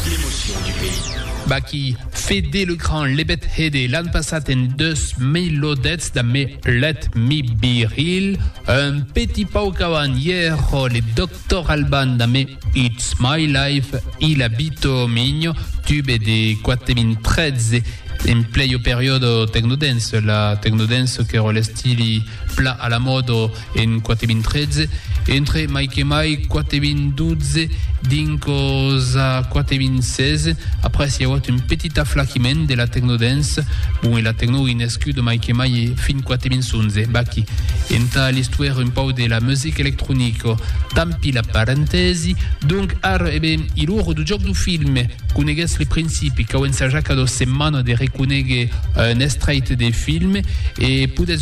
L'emotion du pays. Baky, Fede le Grand, Lebet Hede, l'an passat en 2010 damb Me Let Me Be Real, un petit pauc avant i èra le Doctor Alban damb It's My Life i La Vita o Migno, tube de 4013, en plei au periòde Technodance, la Technodance qu'èra l'estili plan a la mòda, En 4013, entre mai que mai 4012 dinc-os a 4016, après s'i auat un petit aflachiment de la tecno-dance, bon e la tecno i nescut mai que mai fin 4011. Bac-i entà l'istuèr un pauc de la music electronico. Tampi la parentèsi. Donc ara, e ben, i lor du jòc du film. Coneguètz li principi, cau ensajar cada setmana de reconéguer un estrèit de film e podètz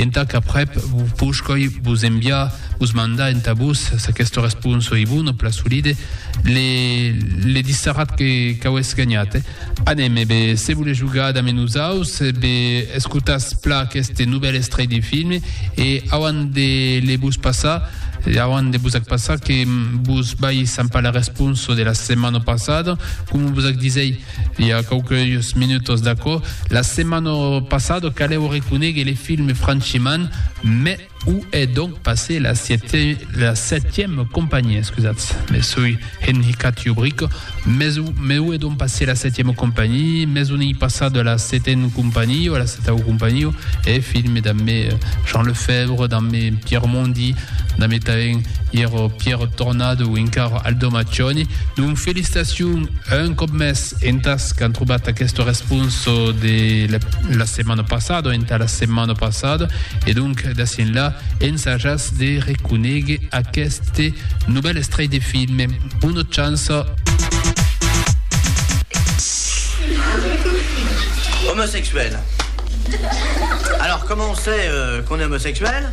Entà qu'aprèp vos pouscoi vos enviar, vos mandar entà vos, s'aquesta responsa ei bona, plan solide, le, le disserat que qu'auetz ganhat. Anem, e be, se volètz jogar damb nosaus, e be, escotatz pla aqueste novèl estrèit de film, e auant de le vos passar, auant de vos ac passar, que vos vai sampar la responsa de la setmana passada, coma vos ac disèi, I a quauqueus minutos d'aquò, la setmana passada, calèu reconéguer le film Franchiman, mès o è donc passé la setièma companhia, excusatz, me soi enhicat jo bric, mès o mès o è donc passé la setièma companhia, mès on ei passada la setena companhia, la setau companhia, eth film damb me Jean Lefèvre, damb me Pierre Mondy, Damb tanben Iero Pierrot Tornado, encara Aldo Maccioni, donc felicitacion un còp mès entàs qu'an trobat aquesta responsa de la setmana passada, entà la setmana passada, e donc d'ací enlà ensajatz de reconéguer aqueste novèl estrelh de film. Bona chance! Homosexuel. Alors comment on sait euh, qu'on est homosexuel?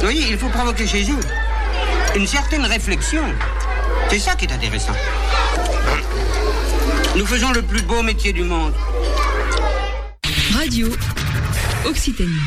Voyez, il faut provoquer chez eux une certaine réflexion. C'est ça qui est intéressant. Nous faisons le plus beau métier du monde. Radio Occitanie.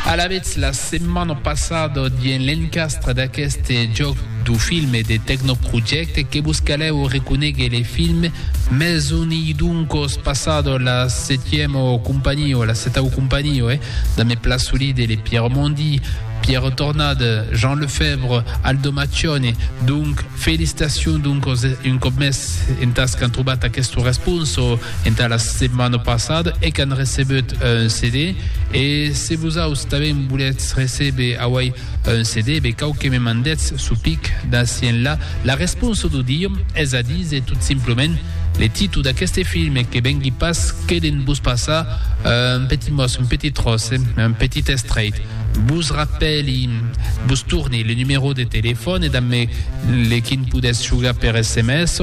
Alavetz la setmana passada dien l'encastre d'aqueste jòc du film de Tecnoproject que vos calèu reconegue le film Maison Iduncos passada las Setièmo companio, la setau companio, eh? Damé Plasolide, le Pierre Mondy, Pierre Tornade, Jean Lefèvre, Aldo Maccione. Donc, felicitacion doncos un còp mès entas qu'an trobat aqueste responso entà la setmana passada e qu'an recebut un CD. E se vosaus tanben volètz recéber auei Un CD be cau que me mandetz su pic d'aci enlà la responsa d'o diom, es a díser tot simplement le titu d'aqueste film que vengui pas que de'n vos passar un petit mos, un petit tròç, un petit estreit. Vos rapèli, vos torni le numero de telefòn e damb me le quin podètz jogar per sms,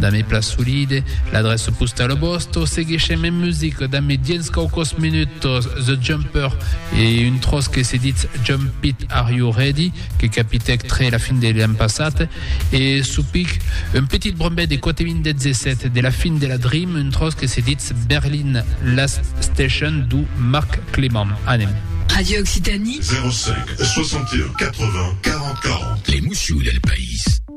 Da me pla solide, l'adresse postal au bosto, seguishem en music da me diens caucos minutos The Jumper e un tros que se dit Jump It Are You Ready que capitec tre la fin de l'an passat e supic un petit brombet de 4.017 de la fin de la Dream un tros que se dit Berlin Last Station du Marc Clément. Anem. Radio Occitanie. 05 61 80 40 40. L'emotion del país.